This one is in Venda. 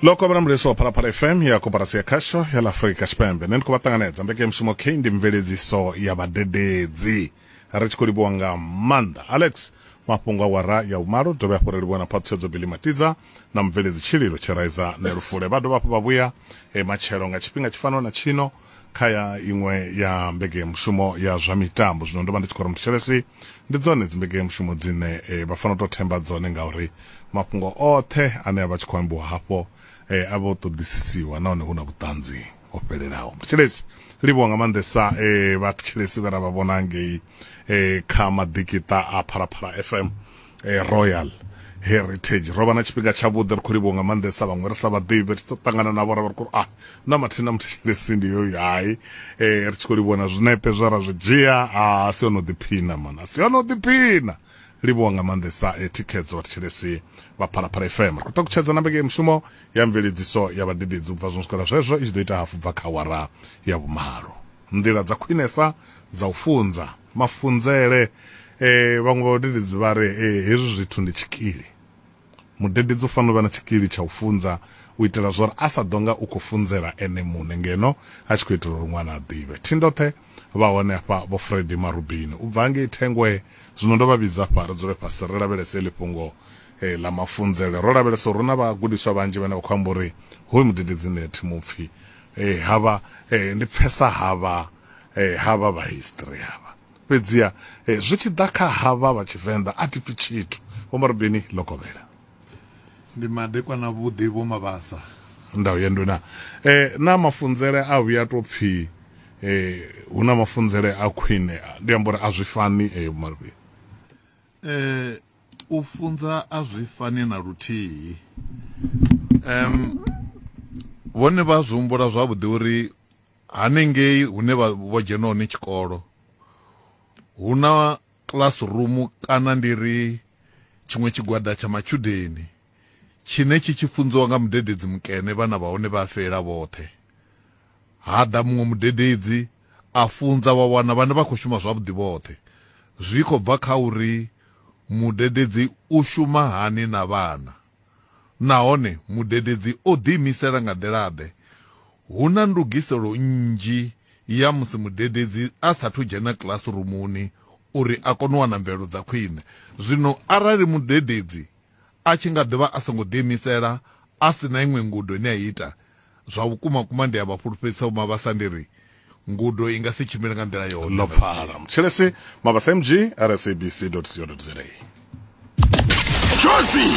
loko vha na mulesi wa phalaphala fm ya koporasi ya khasho ya ḽa afurika tshipembe nṋe ndi khou vha ṱanganedza mbekanyamushumo k ndi mveledziso ya vhadededzi ri tshi khou livhuwa nga maanḓa alex mafhungo a wara ya vhumalo ri dovhe hafhu ri livhuwa na phaṱhutshedzo bili matidza na mubveledzi tshililo tshiraiza nelufule vha dovha hafhu vha vhuya e matshelo nga tshifhinga tshi fanaho na tshino kha ya iṅwe ya mbekeyamushumo ya zwa mitambo zwino ndo vha ndi tshi khou ri muthetshelesi ndi dzone dzimbekeyamushumo dzine e, vha fanela u tou themba dzone ngauri mafhungo oṱhe ane a vha tshi khou ambiwa hafho e, a vha o ṱoḓisisiwa nahone hu na vhuṱanzi ho fhelelaho muthetshelesi livhuwa nga maanḓesa e, vhathetshelesi vhe ra vha vhona ngei e, kha maḓikiṱa a phalaphala fm eh, royal heritage ro vha na tshifhinga tshavhuḓi ri khou livhiwa nga maanḓesa vhaṅwe ri sa vhaḓivhi ri tshi ṱangana navho ra vha ri khou ah na mathina na muthetshelesi ndi yoyu hai eh, ri tshi khou livhiwa na zwinepe zwe ra zwi dzhia ah, a si ono ḓiphina mana a si ono ḓiphina livhiwa nga maanḓesa e eh, thikhedzo vhathetshelesi vha phalaphala fm ri khou takutshedza na mbeke mushumo ya mveledziso ya vhadededzi ubva zwo swikela zwezwo i tshi ḓo ita hafu bva kha wara ya vhumalo nḓila dza khwinesa dza u funza mafunzele eh vhaṅwe vhadededzi vha ri eh hezwi zwithu ndi tshikili mudededzi u fanela u vha na tshikili tsha u funza u itela zwori a sa ḓo nga u khou funzela ene muṋe ngeno a tshi khou itela uri ṅwana a ḓivhe thindoṱhe vha hone afha vho fredi marubini u bva ngei thengwe zwino ndo vha vhidza afha ri dzule fhasi ri lavhelese eḽi fhungo eh, ḽa mafunzele ro lavhelesa uri hu na vhagudiswa vhanzhi vhane vha khou amba uri hoyu mudededzi nṋe thi mupfhi eh, havha eh, ndi pfesa havha eh, havha vha history havha fhedziha eh, zwi tshi ḓa kha havha vha tshivenḓa a thi pfi tshithu vho marubeni lokovhela ndi madekwa na vhuḓi vho mabasa ndau ya nduna eh, na mafunzele a vhuya to pfi eh, hu na mafunzele a khwine ndi amba uri a zwi fani eh, vho marubeni eh, u funza a zwi fani na luthihi um vhone vha zwi humbula zwavhuḓi uri Hanengei hune vha vho dzhena hone tshikolo hu na classroom kana ndi ri tshiṅwe tshigwada tsha matshudeni tshine tshi tshi funziwa nga mudededzi mukene vhana vha hone vha fhelela vhoṱhe. Ha ḓa muṅwe mudededzi a funza wa wana vhana vha khou shuma zwavhuḓi vhoṱhe. Zwi khou bva kha uri mudededzi u shuma hani na vhana. Nahone mudededzi o ḓiimisela nga nḓila-ḓe? Hu na ndugiselo nnzhi ya musi mudededzi a sa athu dzhena kilasirumuni uri a kone u wana mvelelo dza khwine. Zwino arali mudededzi a tshi nga ḓi vha a songo ḓiimisela, a si na iṅwe ngudo ine a ita, zwa vhukuma-kuma ndi a vha fhulufhedzisa Vho-Mabasa ndi ri, Ngudo i nga si tshimbile nga nḓila yone. Ḽo pfala. Mutshilesi, Mabasa MG, RSABC.co.za. Jozi!